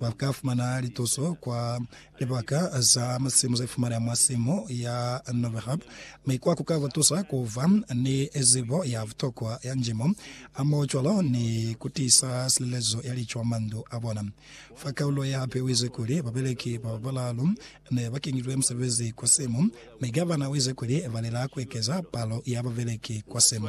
Ba ka fumana lituso kwa libaka za masimu ze fumaneha mwa simu ya Novihub, mi kwa ku ka ba tusa ku ba ni zibo ya butokwa ya njimo, hamohocwalo ni ku tiisa silelezo ya lico mwa mandu a bona. Fa kaulo ye hape uize kuli, Babeleki ba balaalu ne ba kenyilwe musebezi kwa simu, mi Gavana uize kuli ba lela ku ekeza palo ya babeleki kwa simu.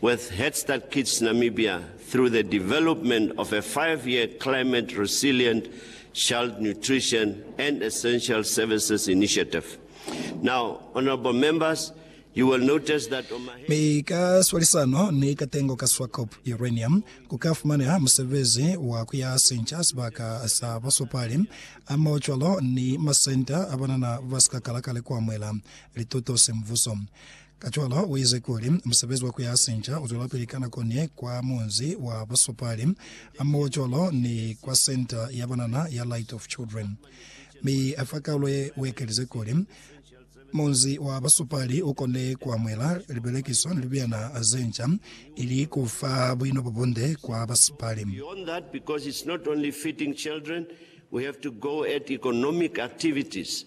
With Head Start Kids Namibia through the development of a five-year Climate Resilient Child Nutrition and Essential Services Initiative. Now, honorable members, you will notice that on my hand, Mi ka swalisano ni katengo ka Swakop Uranium, ku ka fumaneha musebezi wa ku ya sinca sibaka sa basopali, amao cwalo ni masenta a banana ba si ka kala ka likuamuela lituto semvuso. Kacwalo uize kuli, Musebezi wa kuyasinca uzwelapili ka nako ni kwa munzi wa busupali, hamoho cwalo ni kwa senta ya banana ya Light of Children. Mi afa kaulo ye uekelize kuli, Munzi wa busupali ukone kuamuhela libelekiso ni libyana zenca, ili kufa buino bobunde kwa basipali. Beyond that, because it's not only feeding children, we have to go at economic activities.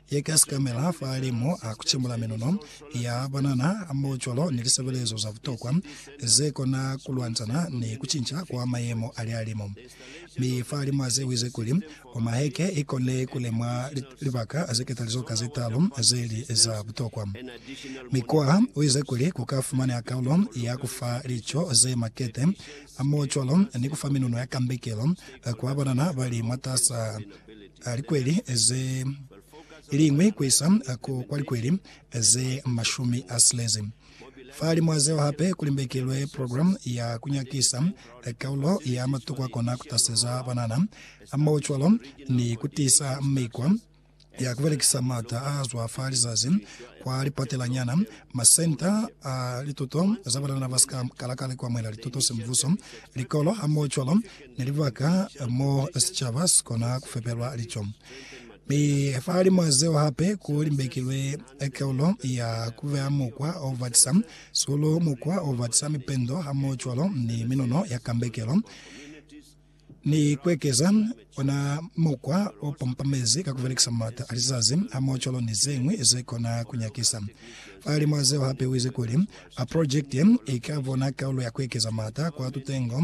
Ye ka sikamela fa limo a kucemula minono ya banana mo cwalo ni lisebelezo za butokwa ze kona kulwanzana ni kucinca kwa mayemo ali a limo. Mi fa limo a zewize kuli Omaheke i kone kulemwa libaka ze ketalizo ka ze talu ze li za butokwa. Mi Koa u ize kuli ku ka fumaneha kaulo ya ku fa lico ze makete mo cwalo ni ku fa minono ya kambekelo kwa banana ba li mwatasa a likweli ze liñwi ku isa ku kwa likweli ze mashumi a silezi. Fahalimw'a zeo hape ku limbekelwe program ya ku nyakisa kaulo ya matuku a kona ku taseza banana, hamohocwalo ni ku tiisa mikwa ya ku belekisa m'ata a zwa fa lizazi kwa lipatelanyana, masenta a lituto za banana ba si ka kala ka likwamwela lituto semvuso, likolo, hamohocwalo ni libaka mo sicaba si kona ku fepelwa lico. Mi fa limo zeo hape ku limbekilwe keulo ya ku beya mukwa o batisa sulu, mukwa o batisa mipendo hamohocwalo ni minono ya kambekelo, ni ku ekeza ona mukwa o pampamezi ka ku belekisa maata a lizazi hamohocwalo ni ze ñwi ze kona ku nyakisa. Fa limo zeo hape u ize kuli, Projekte ye i ka bona keulo ya ku ekeza maata kwa tutengo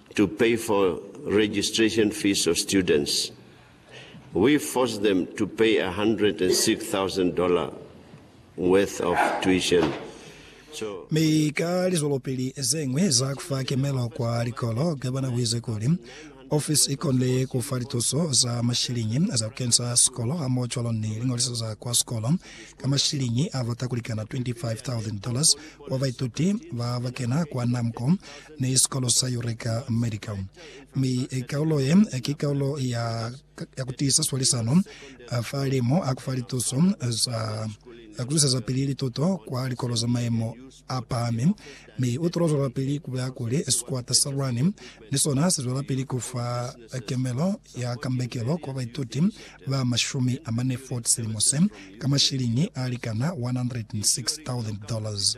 to pay for registration fees of students, we forced them to pay $106,000 worth of tuition. So. Mi ka lizwelopili zeñwi za kufa kemelo kwa likolo, gavana uize kuli ofisi ikonile kufa lituso za mashiliñi za kukenisa sikolo hamoho cwalo ni liñoliso za kwa sikolo ka mashiliñi a bata kulikana $25,000 kwa baituti ba bakena kwa NAMCO ni sikolo sa Eureka Medical, mi kaulo ye ki kaulo ya, ya kutiisa swalisano fa limo a kufa lituso za ku zwisezapili lituto kwa likolo za maemo a pahami, mi u tula zwelapili ku bulela kuli sikwata sa lwani ni sona si zwelapili ku fa kemelo ya kambekelo kwa baituti ba mashumi amane 40 silimo se, ka mashiliñi a likana 106,000 dollars.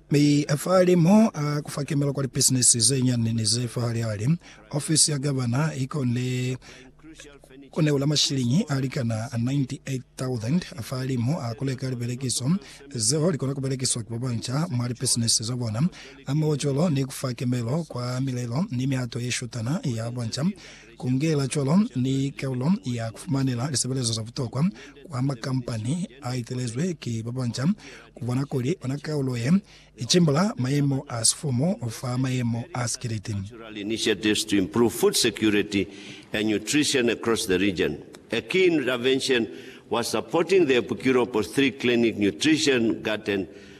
Mi fahali mo a ku fakemela kwa lipisinisi ze nyani ni ze fahali ali, ofisi ya gavana i konile ku neula mashiliñi a likana 98,000 fahali mo a ku leka libelekiso zeo li kona ku belekiswa ki babanca mwa lipisinisi za bona, hamohocwalo ni ku fa kemelo kwa milelo ni mihato ye shutana ya banca. Kungela cwalo ni kaulo ya kufumanela lisebelezo za butokwa kwa makampani a itelezwe ki ba banca, kubona kuli ona kaulo ye icimbula mayemo a sifumu fa mayemo a sikiliti.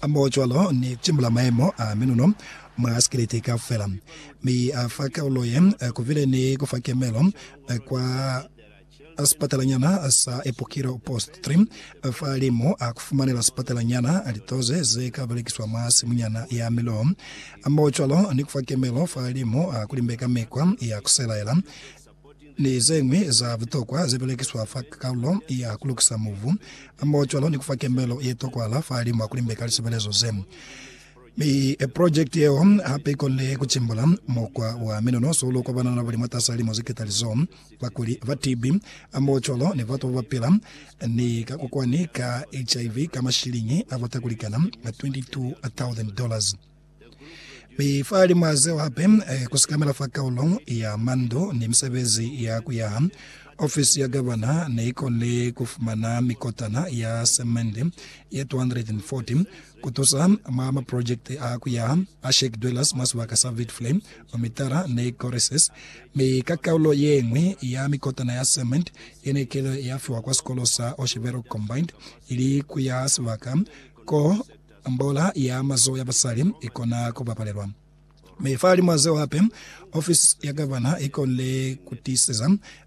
Hamohocwalo ni timula maemo a minuno mwa sikiliti kaufela, mi a fa kalulo ye kubile ni ku fa kemelo kwa sipatalanyana sa Epokilo Post Trim fa limu a ku fumanela sipatalanyana litoze ze ka belekiswa mwa simunyana ya miloho, hamohocwalo ni ku fa kemelo fa limu a ku limbe ka mikwa ya ku selaela. ni zeñwi za butokwa zebelekiswa fa kalulo ya kulukisa mubu, hamohocwalo ni kufa kembelo yetokwahala fahalimu ha kulimbeka lisebelezo ze. Mi projekiti yeo hape ikonile kucimbula mukwa wa minonoso ulo kwa banana babali mwatasa limo zeketalizo, bakuli ba TB, hamohocwalo ni batu babapila ni kakokwani ka HIV ka mashiliñi abata kulikana 22,000 dollars. Mi fa lima zeo hape, eh, ku sikamela fa kaulo ya mandu ni misebezi ya ku yaha, ofisi ya gavana ne i konile ku fumana mikotana ya semende ye 240 ku tusa mwa maprojekiti a ku yaha a Shake Dwellers mwa sibaka sa Witflay, Omitara ni Coresses, mi ka kaulo ye ñwi ya mikotana ya semende ye ne kile ya fiwa kwa sikolo sa Oshevero Combined ili ku yaha sibaka ko Mbola ya mazoho ya basali i kona ku bapalelwa. Mi fahalimw'a zeo hape, ofisi ya gavana i konile ku tiiseza